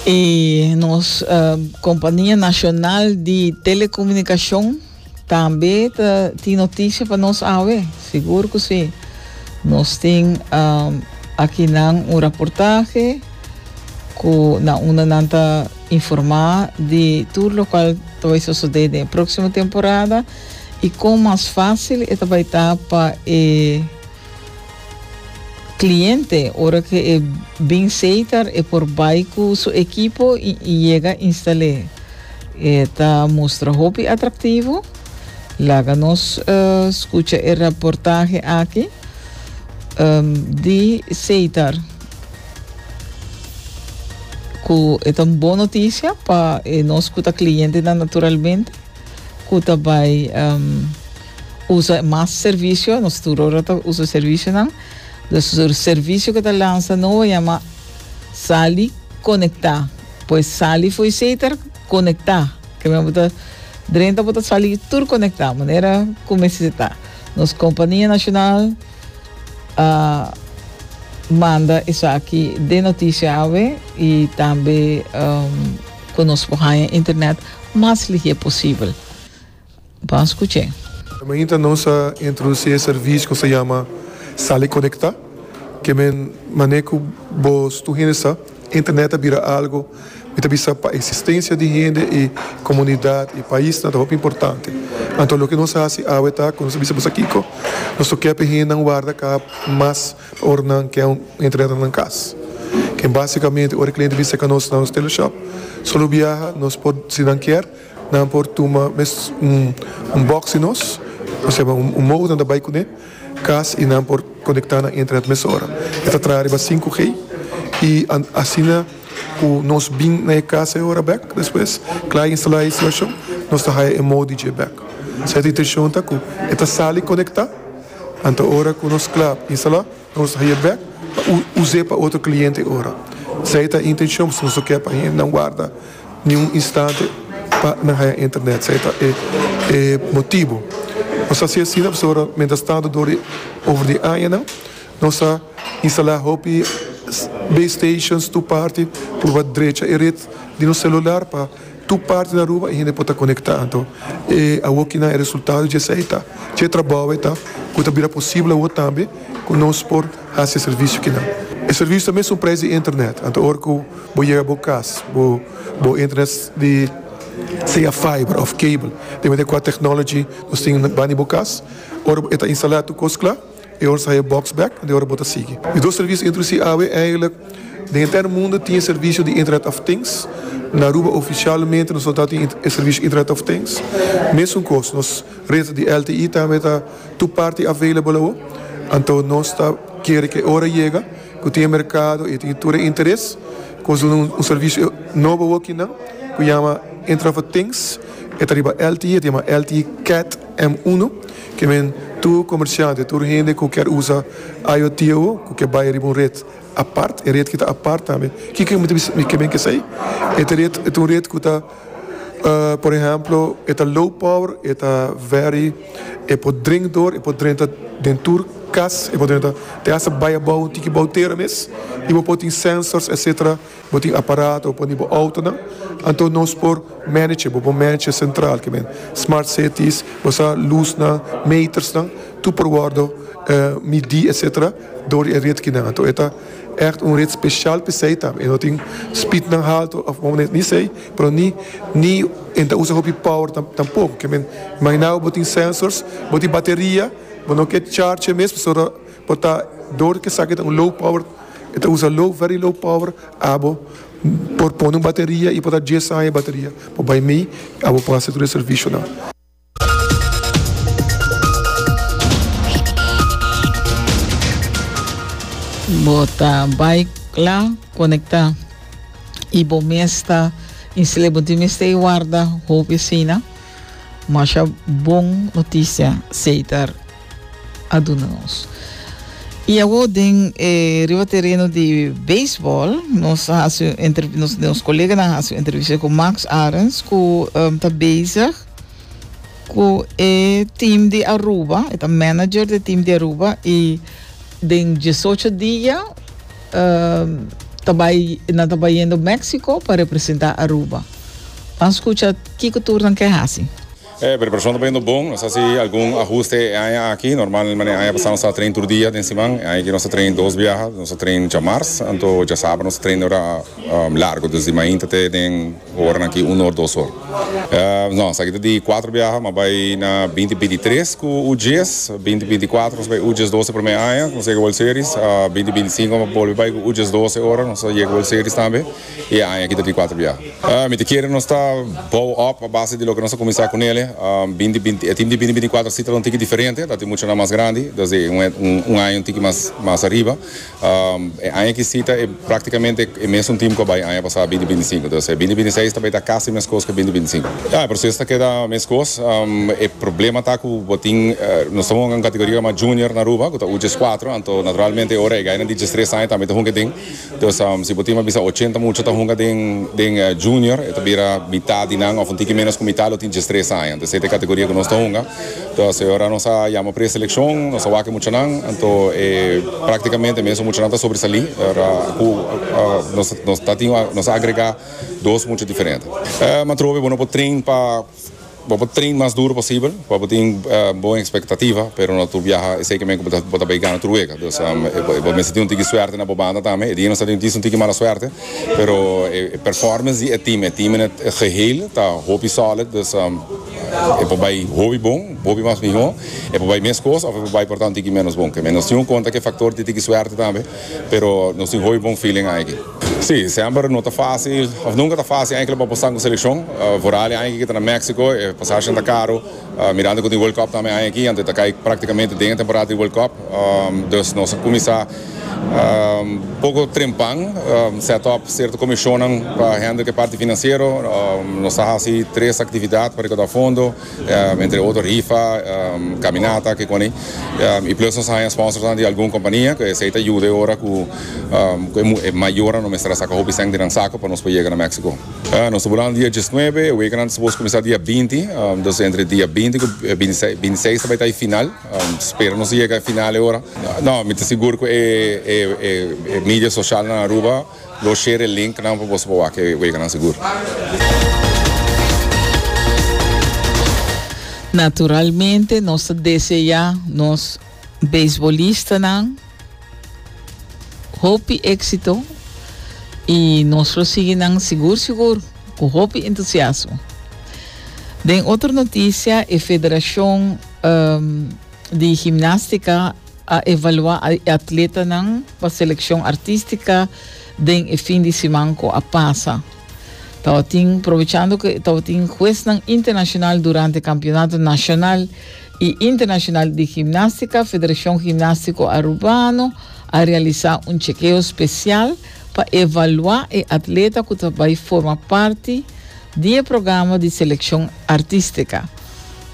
E nos kompania nashonal di telekomunikashon tambe ta tin noticia pa nos awe. Sigur ku si. Nos tin akinan un raportahe ku na unda nan ta informá di tur lokual ta bai sosodé den e próksimo temporada i kon mas fásil e ta bai ta pa e Cliente, ora cu e bin seitar e por bay cu su equipo y y yega instale. E ta mustra hopi atractivo. Laga nos scucha e raportahe aki di seitar cu e ta un bon noticia pa e nos cu ta clientenan naturalmente cu ta bay Usa mas servicio, nos tur ora ta usa servicionan, los servicio cu ta lansa no a yama sal y conecta, pues sal y fo'i sei ta conecta, ke men bo ta drenta bo ta sal y tur conecta, manera cu mester si ta. Nos compania nacional a manda esaki den noticia awe y tambe cu nos por haya internet mas lihé posibel. Bon scuche. Mainta nos a introduci e servicio cu nos ta yama Sal y Conecta, ke men mane cu bo stu hende sa, internet a bira algo, mi ta bisa pa existencia di hende y comunidad y paisnan ta hopi importante. Anto loke nos a haci awe ta cu nos a bisa boso kico, nos ta ocupa e hendenan warda cab mas pa ora nan ke un internet na nan cas. Ke basicamente ora e cliente bisa ca nos na nos teleshop, solo biaha nos por si nan kier. Nan por tuma mes un un box di nos, oseba un un modem ta bai kuné kas i nan por konektá na internet mes ora. E ta traha riba sinku G i asina ku nos bin na e kas e ora bèk despues, kla e instalá e instalashon, nos ta haya e modi dje bèk. Sa e ta intenshon ta ku e ta sali konektá, anto ora ku nos kla instalá, Nos ta haya bek pa us'é pa otro cliente ora. Esei ta e intencion pasobra nos no ker pa hendenan warda ni un instante pa nan haya internet. Esei ta e motibo. Nos ta haci asina pasobra mientras tanto dor di over di añanan nos a instala hopi base stations tur parti purba drecha e red di nos celular pa. Tur parti na Aruba e hende por ta conecta, anto e awo kinan e resultado dje esei ta, dje trabao e ta cu ta bira posible awo tambe cu nos por haci e servicio kinan. E servicio ta mesun prijs di internet, anto ora cu bo yega bo cas bo bo internet di sea fiber of cable, depende cu a technology nos tin bani bo cas, ora e ta instala tur cos cla. E ora sa e box bek and e ora bo ta sigui. Di dos servicio introduci awe eigenlik den henter mundo tin e servicio di internet of things. Na Aruba oficialmente nos no ta tin e servicio internet of things. Mesun cos nos red di LTE tambe ta tur parti available awo. Anto nos ta kere cu e ora yega cu tin e mercado y e tin tur e interes cu nos duna un servicio nobo awo kinan cu yama internet of things e ta riba LTE e ta yama LTE Cat M uno. Ke men, tur komersiante, tur hende ku kèr usa IoT awo, ku ke bai riba un ret apart, e ret ki ta apart tambe. Kiko ke men ke sai? E ta ret, e ta un ret ku ta, por ehèmpel, e ta low power, e ta very, e por drenta dor, e por drenta den tur kas, e por drenta te hasta bai abou, tiki bou tera mes, i bo por tin sensors, etsetera. Bo tin aparato pa uni bo outonan, anto nos por manager bo, bo manager sentral ke men, smart cities, bo sa lusnan, metersnan, tur por wordo midi etc. Dor di e ret kinan. Anto e ta ècht un ret speshal pa esei ta. E no tin speednan halto òf unda manera, ni esei, pero ni ni e ta usa hopi power tampoko. Ke men, imaginá bo, bo tin sensors, bo tin bateria, bo no ke charge e mes pasobra. Bo ta door cu esaki ta un low power, e ta usa low, very low power, abo por pone un bateria y por ta dies aña e bateria. Bo bay mi y abo por haci tur e servicionan. Bo ta bay la conecta y bo mes ta instale. Bo tin mester y warda hopi asina. Masha bon noticia, Cesar. a duna nos. Y awor den e riba tereno di baseball nos a haci un entrev nos nos coleganan a haci un entrevista cu Max Arends cu em, ta bezig cu e team di Aruba, e ta manager di team di Aruba y den diesocho dia em, ta bay nan ta bay yendo Mexico pa representa Aruba. Ban scucha kico tur nan ke haci. E preparacion ta bayendo bon. Nos a haci algun ahuste e aña aki. Normalmente e aña pasá nos staba train tur dia den siman. E aña aki nos ta train dos biaha. Nos ta train djamars, anto djasabra nos ta train ora largo, desde di mainta te den oranan aki un or, dos or. No, esaki ta di cuatro biaha, nos bai na binti binti tres cu U djes, binti binti cuatro nos bai U djes doce prome aña, nos a yega World Series, binti binti cinco nos a bolbe bai cu U djes doce ora nos a yega World Series tambe. E aña aki ta di kuater bia. Mi ta kere nos ta bou op a base di loke nos a kuminsá ku nele. Binti binti, e tim di binti binti i kuater si ta tabata un tiki diferente, ta tin muchanan mas grandi, dus e un aña i un tiki mas mas ariba. E aña aki si ta e praktikamente e mesun tim ku a bai aña pasá binti binti sinku. Dus e binti binti seis ta bai ta kasi meskos ku e binti binti sinku. Ya, e proseso ta keda meskos. E problema ta ku bo tin, nos ta wòrdu na un kategoria llamá junior na Aruba ku ta uj djes kuater, anto naturalmente ora e gainan di djes tres aña tambe ta hunga den. Pues, si bo tin pa bisa ochenta mucha ta hunga den den Junior, e ta bira mitat di nan òf un tiki ménos ku mitat lo tin diestres aña. Anto esei ta e kategoria ku nos ta hunga. Anto asei ora nos a yama preselekshon, nos a wak e muchanan, anto e práktikamente e mesun muchanan ta sobresalí ora ku nos nos ta tin nos a agregá dos mucha diferente. Matrobe bo no por train pa. Bo por train mas duro posibel pa bo tin bon expectativa, pero no tur biaha esey ke men ku bo ta bay gana tur wega. Dus bo mester tin un tiki suerte na bo banda tambe. E dia nos a tin un tiki mala suerte, pero e performance di e team, e team en het geheel ta hopi solid, dus e por bay hopi bon, hopi mas miho, e por bay meskos of e por bay por ta un tiki menos bon. Nos tin un konta ku e factor di tiki suerte tambe, pero nos tin hopi bon feeling aki. Sí, semper no ta fácil, of nunca ta fácil enkele pa apostan ku selekshon. Foral di aña aki kita na Méksiko, e pasashen ta karu, mirando ku tin World Cup tambe aña aki, anto e ta kai praktikamente den e temporada di World Cup. Dus nos a kuminsá poko trempan, sèt òp sierto komishonnan pa hèndel ku e parti finansiero. Nos a hasi tres aktividat pa rekaudá fondo. entre otro rifa, caminata, kikoni, y plus nos a haña sponsornan di algun compania, cu esey ta yuda e ora cu e mayornan no mester a saca hopi cent di nan saco pa nos por yega na Mexico. Nos ta bulandu dia diesnuebe, e wekennan ta suppose cuminsa dia binti, dus entre dia binti cu bintiseis ta bay ta e final, spera nos a yega e final e ora. No, mi ta sigur cu e media socialnan Aruba. Lo share e link nan pa boso por wak e weganan segur. Naturalmente nos ta deseá nos beisbolistanan hopi éksito i nos lo sigui nan sigur sigur ku hopi entusiasmo. Den otro notisia e Federashon di Himnástika. A evaluá e atletanan pa selekshon artístika den e fin di siman ku a pasa. Tabatin probechando ku tabatin huesnan internashonal durante kampionato nashonal i internashonal di gimnástika, Federashon Gimnástiko Arubano a realisá un chekeo spesial pa evaluá e atleta ku ta bai forma parti Di e programa di selekshon artistika.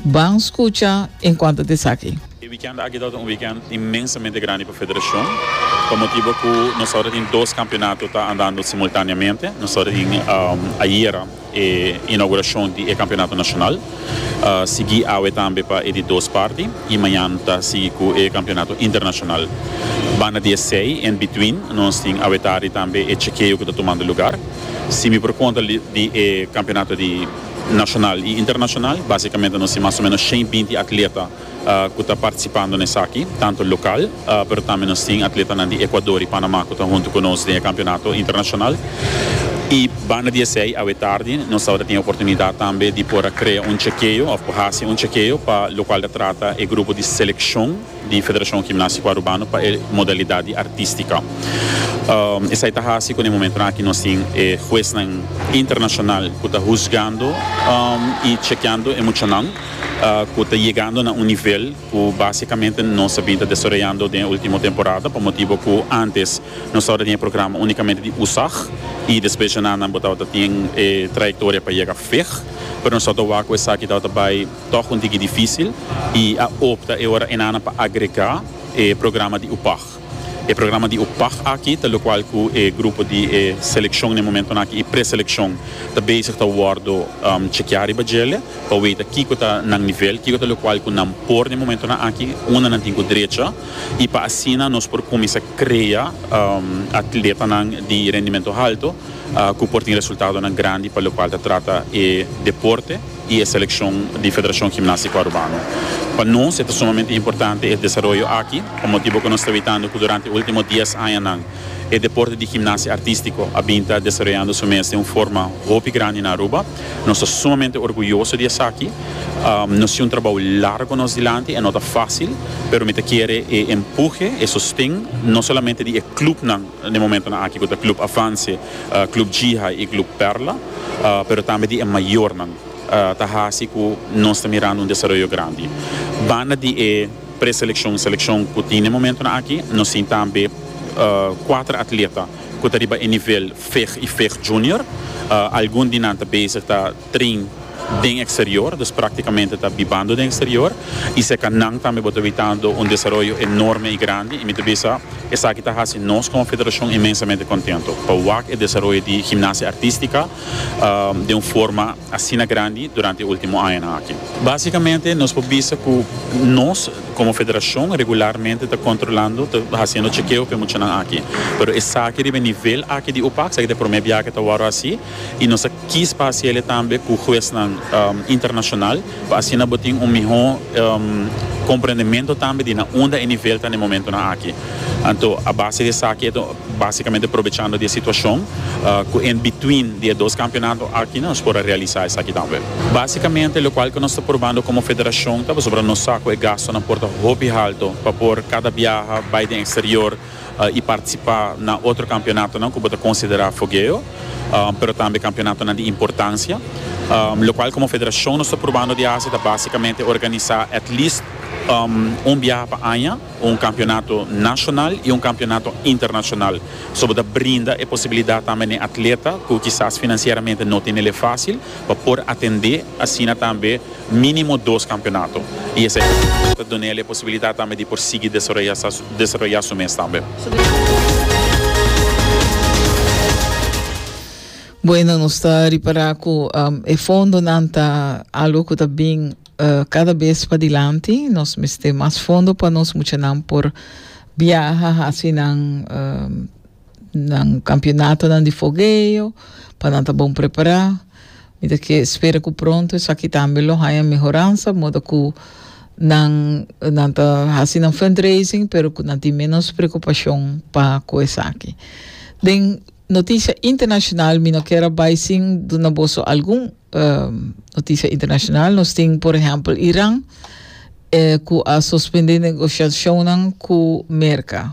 Ban skucha enkuanto ta esaki. E wikènt aki tabata un wikènt inmensamente grandi pa federashon, pa motibu ku nos tabata tin dos kampionato ta andando simultaneamente. Nos tabata tin ayera e inaugurashon di e kampionato nashonal, sigui awe tambe pa e di dos parti i mañan ta sigui ku e kampionato internashonal. Banda di esei, en bitwin, nos tin awe tardi tambe e chekeo ku ta tumando lugar. Si mi por konta di e kampeonato di nashonal i internashonal, basikamente nos tin mas o menos shen binti atleta ku ta partisipando na esaki, tantu lokal, pero tambe nos tin atletanan di Ekuador i Panamá ku ta huntu ku nos den e kampeonato internashonal. I banda di esei awe tardi nos tabata tin e oportunidat tambe di por a krea un chekeo òf por hasi un chekeo pa lokual ta trata e grupo di selekshon, di Federacion Gimnastico Arubano pa e modalidad di artistica. Esai ta haci cu na e momentonan aki nos tin e huesnan internacional cu ta huzgando y chekeando e muchanan cu ta yegando na un nivel cu basicamente nos a bin ta desaroyando den e ultimo temporada pa motibo cu antes nos tabata tin e programa unicamente di USAG y despues djanan nan bo tabata tin e trayectoria pa yega veg pero nos tabata wak cu esaki tabata bay Tòg un tiki difísil i a opta e ora enan pa agregá e programa di UPAG. E programa di UPAG aki ta lokual ku e grupo di e selekshon na e momentunan aki i preselekshon ta bezig ta wòrdu chekeá riba djele pa weta kiko ta nan nivel, kiko ta lokual ku nan por na e momentunan aki, unda nan tin ku drecha i pa asina nos por kuminsá krea atletanan di rendimentu haltu ku por tin resultadonan grandi pa lokual ta trata e deporte. y e seleccion di Federacion Gimnastico Arubano. Pa nos e ta sumamente importante e desaroyo aki, pa motibo cu nos ta witando cu durante e ultimo dies añanan e deporte di gimnasia artistico a bin ta desaroyando su mes den un forma hopi grandi na Aruba. Nos ta sumamente orguyoso di esaki. Nos tin un trabou largo nos dilanti, e no ta facil, pero mi ta kere e empuje, e sosten, no solamente di e clubnan, den momentonan aki ku ta Club Avance, Club G-High i Club Perla, pero tambe di e mayornan, ta hasi ku nos ta mirando un desaroyo grandi. Banda di e preselekshon i selekshon ku tin den momentonan aki, nos tin tambe kuater atleta ku ta riba e nivel veg i veg junior. Algun di nan ta bezig ta. trin den eksterior, dus praktikamente ta bibando den eksterior, i serka nan tambe bo ta bibando un desaroyo enorme i grandi, i mi ta bisa esaki ta hasi nos komo federashon inmensamente kontentu pa wak e desaroyo di gimnasia artística den un forma asina grandi durante e último añanan aki. Básikamente nos por bisa ku nos komo federashon regularmente ta kontrolando, ta hasiendo chekeo pa e muchanan aki, pero esaki riba e nivel aki di UPAC, esaki ta e promé biaha ku ta wòrdu hasi. y nos a kis pa haci ele tambe cu huesnan internacional pa asina bo tin un miho comprendemento tambe di na unda e nivel ta na e momentonan aki. Anto a base di esaki e ta basicamente probechando di e situacion cu en between di e dos campeonato aki nos por a realisa esaki tambe. Basicamente locual cu nos ta probando como federacion ta pasobra nos sa cu e gastonan por ta hopi halto pa por cada biaha bay den exterior, y participa na otro campeonatonan cu bo ta considera fogueo pero tambe campeonatonan di importancia locual como federacion nos ta probando di haci ta basicamente organisa at least un biaha pa aña un campeonato nacional y un campeonato internacional so bo ta brinda e posibilidad tambe na e atleta cu kisas financieramente no tenele facil pa por atende asina tambe minimo dos campeonato y esey ta duna el e posibilidad tambe di por sigui desaroya su mes tambe. Bueno nos ta ripara cu e fondonan ta algo cu ta bin cada bes padilanti. Nos mester mas fondo pa nos muchanan por biaha, haci nan. nan campeonatonan di fogueo pa nan ta bon prepará. Mi ta ke spera ku pronto esaki tambe lo haña mehoransa modo ku nan nan ta hasi nan fundraising pero ku nan tin menos preokupashon pa ku esaki. Den notisha internashonal mi no kier a bai sin duna boso algun notisha internashonal. Nos tin por ehèmpel Iran ku a sospendé negoshashonnan ku Merka.